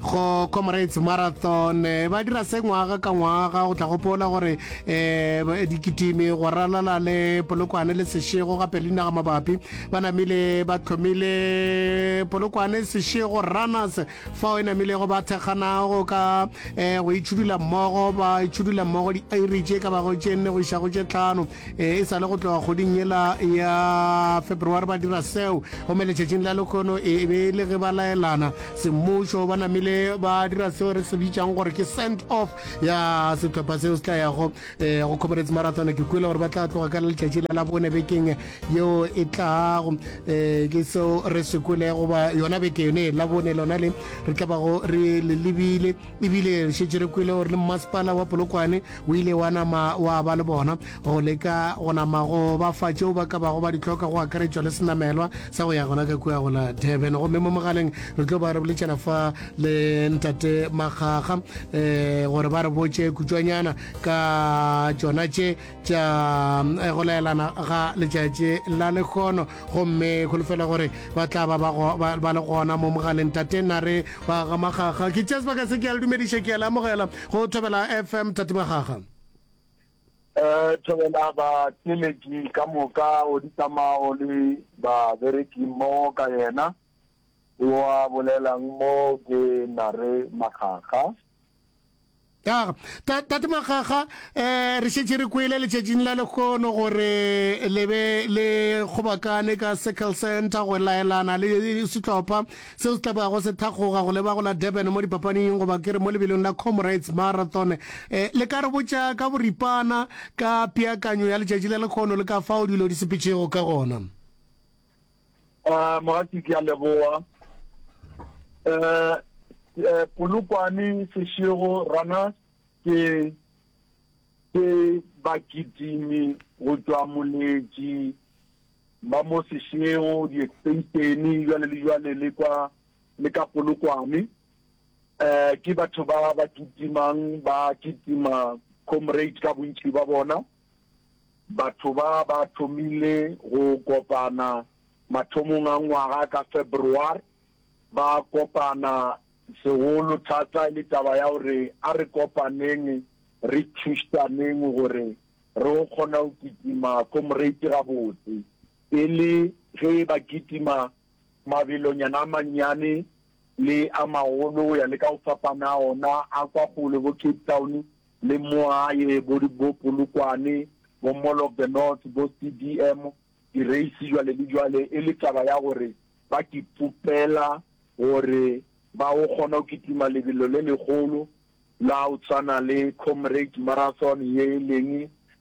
go comrades marathon eh, ba dira se ngwaga ka ngwaga go tla gopola gore um dikitimi go ralala le polokwane le sešego gape le dinaga mabapi ba namile ba tlhomile polokwane sešego runners fao e namilego ba thekganago ka um go itšhudula mmogo ba itšhudula mmogo di-irage e ka bago tše nne go iša go tše tlhano E sa le go tloga kgoding yela ya February ba dira seo, gomme letšatšing la lekgono e be e le ge ba laelana semmušo, ba namile ba dira seo re se bitšang gore ke send off ya sehlopha seo se tla yago eh, go comrades marathon. Ke kwele gore ba tla tloga ka letšatši la labone bekeng yeo e tlago eh, ke seo re se kwele goba yona beke yone labone lona le re tla bago re le lebile E bile re šetše re kwele gore le mmasepala wa Polokwane o ile wa nama wa ba le bona go leka go nama go ba fa tšeo ba ka bago ba di hloka go akaretšwa le senamelwa sa go ya gona ka kua go la Durban. Gomme mo mogaleng re tlo ba re boletšana fa le ntate Makgakga um gore ba re botše kutšwanyana ka tšona tše tša eh, go laelana ga letšatši la lekgono gomme kholofela gore ba tla ba ba le gona mo mogaleng tate na re ba ga magaga ke tšea sebaka se ke a le dumediša ke a le amogela go thobela fm tate magaga um thobela bateleki ka moka o ditsamao le babereki mmogo ka yena wa bolelang mo ke nare magaga ya tate magaga um eh, re šetse re kwele letšatšing la lekgono gore le be le kgobakane ka circle center go laelana le setlopha seo se tlabago se thakgoga go leba go la durban mo dipapaning goba ke re mo lebelong la comrades marathon um le ka re botša ka boripana ka peakanyo ya letšatši la lekgono le ka fao dilo di sepetšego ka gona Ah, Mogati ke a leboa. Eh, eh Polokwane Seshego rana ke ke bakitimi go tswa moletši ba mo Seshego di-extensione jwale le jwale le kwa le ka Polokwane. Eh ke batho ba ba kitimang ba kitima comrade ka bontši ba bona. Batho ba ba thomile go kopana mathomong a ngwaga ka February. Ba kopana segolo thata e le taba ya gore a re kopaneng re thušaneng gore re go kgona go kitima Comrade gabotse. Pele ge ba kitima mabelonyana a mannyane le a magolo go ya le ka go fapana a ona, a kwa kgole bo Cape Town le mo gae, bo di bo Polokwane, bo Mall of the North, bo CDM, direisi jwale le jwale, e le taba ya gore ba kipopela gore ba go kgona go kitima lebelo le legolo la go tshwana le Comrades Marathon ye e leng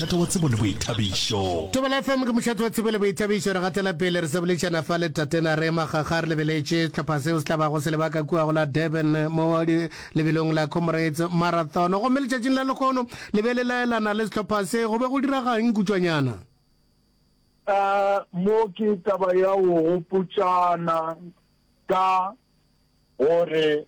Mošate wa tsebo le boithabišo. Thobela FM ke mošate wa tsebo le boithabišo. Re gatela pele re sa boledišana fa le Tatena re ema kgakga re lebeletše sehlopha seo se tla bago se lebaka kua go la Durban mo di lebelong la Comrades Marathon. Gomme letšatšing la lehono le be le laelana le sehlopha se. Go be go diraga'ng kutšwanyana? Mo ke taba ya go gopotšana ka gore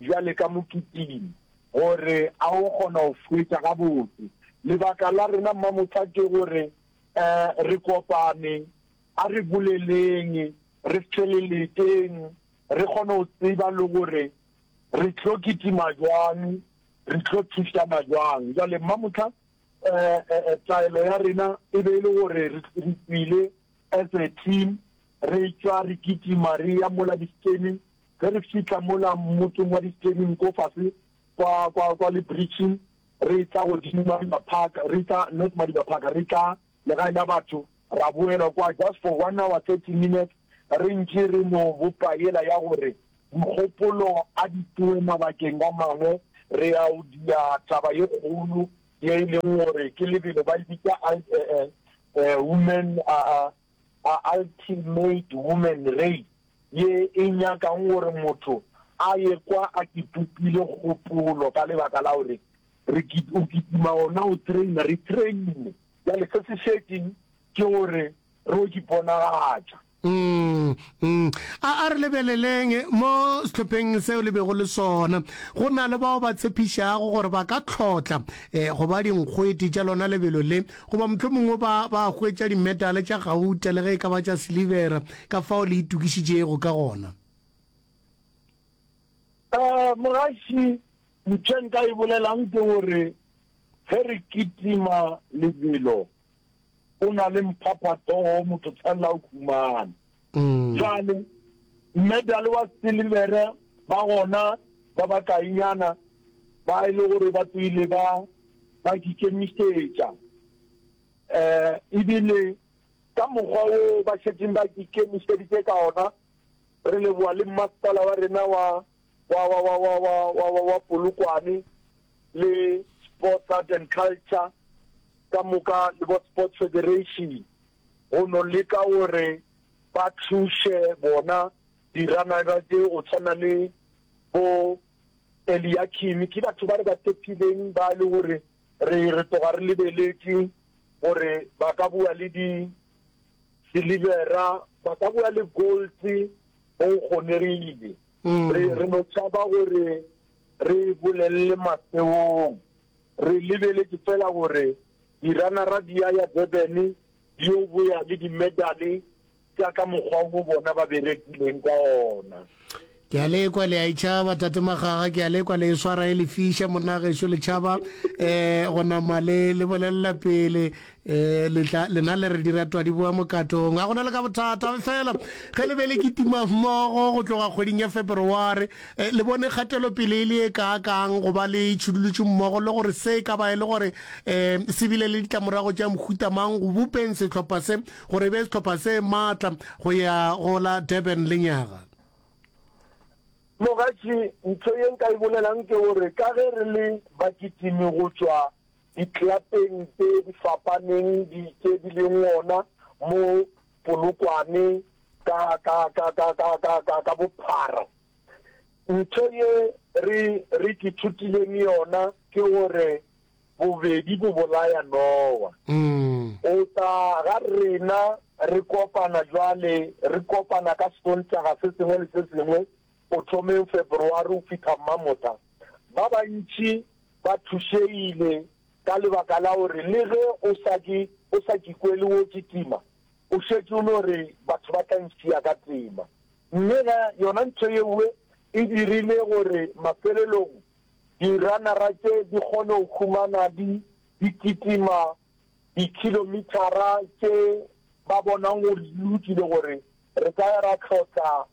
Bjale ka mo kitima, gore a o kgona go hwetša gabotse. Lebaka la rena, Mmamohla, ke gore eh, re kopane, a re boleleng, re feleleteng, re kgone go tseba le gore re tlo kitima jwang, re tlo thušana jwang. Bjale, Mmamohla, eh, eh, eh, taelo ya rena e be e le gore re, re tswile as a team, re tšwa re kitima, re ya mola di-stadium, Ge re fihla mola motseng wa distering ko fase kwa, kwa, kwa lebritšing, re etla godimo Madiba Park, re etla, not Madiba Park, re etla legae la batho, ra boela kwa just for one hour, thirty minutes, re ntše re no bopa yela ya gore mogopolo a di tsoe mabakeng a mangwe, re ya go dia taba ye kgolo ye e leng gore ke lebelo ba e bitsa, I, eh, eh, women, a, a. a Ultimate Woman Race ye e nyakago gore motho a ye kwa a kipopile kgopolo ka lebaka la gore re kit o kitima gona o traina re traine bjale se se šetšeng ke gore re o kiponagatša. Umm umm a a re lebeleleng mo sehlopheng seo le bego le sona go na le bao ba tshepišago gore ba ka tlhotla eh go ba dinkgwete tša lona lebelo le. Goba mohlomongwe o ba, ba a hwetša dimetale tša gauta, le ge e ka ba tša silivera, ka fao le itokišitšego ka gona. Ee, mogaši, mpša nka e bolelang ke gore, ge re kitima lebelo, go na le mphaphathogo, motho tshwanela go humana. Bjale, medal wa silivere ba gona ba bakainyana ba e le gore ba tswile ba, ba di kemišetša, um, ebile ka mokgwa wo ba šetšeng ba di kemišeditše ka ona, re leboga le mmasepala wa rena wa wa, wa, wa, wa, wa, wa, wa, wa Polokwane le Sports Art and Culture ka moka le bo Sports Federation go no leka gore ba thuše bona diranaga tse go tshwana le bo Eliakim ke batho ba re ba tepileng ba le gore re re toga re lebeletše gore ba ka bua le di silivera ba ka bua le gold go kgonegile Re, re no tšhaba gore re e bolelele mafeong. Re lebeletše feela gore diranara di ya ya Durban di yo boya le dimedale tša ka mokgwa wo bona ba berekileng ka ona. Ke a le kwa le a e tšhaba, Tate Magaga, ke a le kwa le e swara e lefiša, monnagešu, le tšhaba um go nama le, le bolelela pele, E le tla lena le re dira twadi boa mokatong a gona le ka bothata fela ge le be le kitima mmogo go tloga kgweding ya February e, le bone kgatelo pele e le e ka kang go ba le tshudulutšu mmogo le gore se ka ba e le gore e se bile le ditlamorago tša mohuta mang go bopeng sehlopha se gore e be sehlopha se matla go ya go la Durban le nyaga Mogatši ntho ye nka e bolelang ke gore ka ge re le bakitimi go tšwa Diklapeng tše di fapaneng di tše di leng gona mo Polokwane ka, ka, ka, ka, ka, ka, ka, ka bophara. Ntho ye re, re ke thutileng yona ke gore bobedi bo bolaya nowa. O tla ga rena re kopana jwale, re kopana ka Sontaga se sengwe le se sengwe, go thomeng Feberwari go fihla Mmamotha, ba bantši ba thušegile ka lebaka la gore le ge o sa ke o sa ke kwele wo kitima, o šetše o no re batho ba tla ntšea ka tema. Mme ga yona ntho yewe e dirile gore mafelelong diranara tše di kgone go humana di di kitima dikilomithara tše ba bonang gore di lokile gore re ka ya ra tlhotla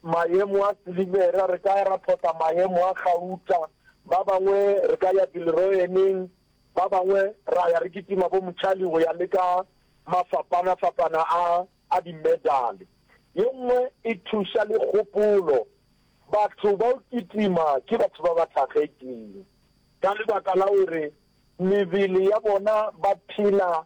Maemo a Silivera, re ka ya ra phota maemo a gauta, ba bangwe re ka ya Bilroeneng, ba bangwe ra ya re kitima bo Mutshali go ya le ka mafapana-fapana a a dimedale. Ye nngwe e thuša le kgopolo, batho ba o kitima ke batho ba ba thakgetšweng ka lebaka la gore mebele ya bona ba phela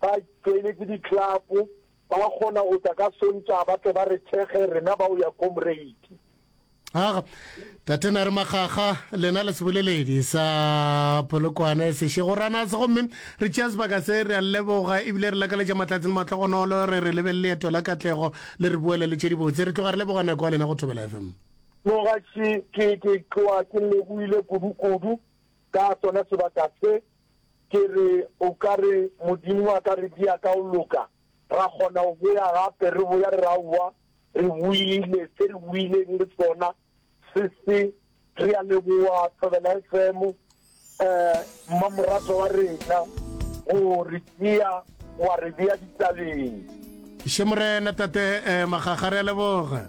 ba tšweletše diklapo, ba kgona go tla ka sontšha ba tle ba re thekge rena ba o ya comrade. Aga, tate na re makgakga lena le seboleledi sa polokwane sešego ranase gomme re tšea sebaka se re a leboga ebile re lakaletša matlatsi le matlhogonolo re re lebelele leeto la katlego le re boele le tše dibotse re tloga re leboga nako ya lena go thobela fm nogaši ke ke tloa ke leboile kudu-kudu ka tsona sebaka se Ke re, O ka re, Modimo a ka re di ya ka go loka, ra kgona go boya gape, re boya re re, Aowa, re boile, se re boileng le sona se se. Re a leboga Thobela FM, mmamoratwa wa rena, go re tšea wa re bea ditabeng. Še Morena, Tate Makgakga, re a leboga.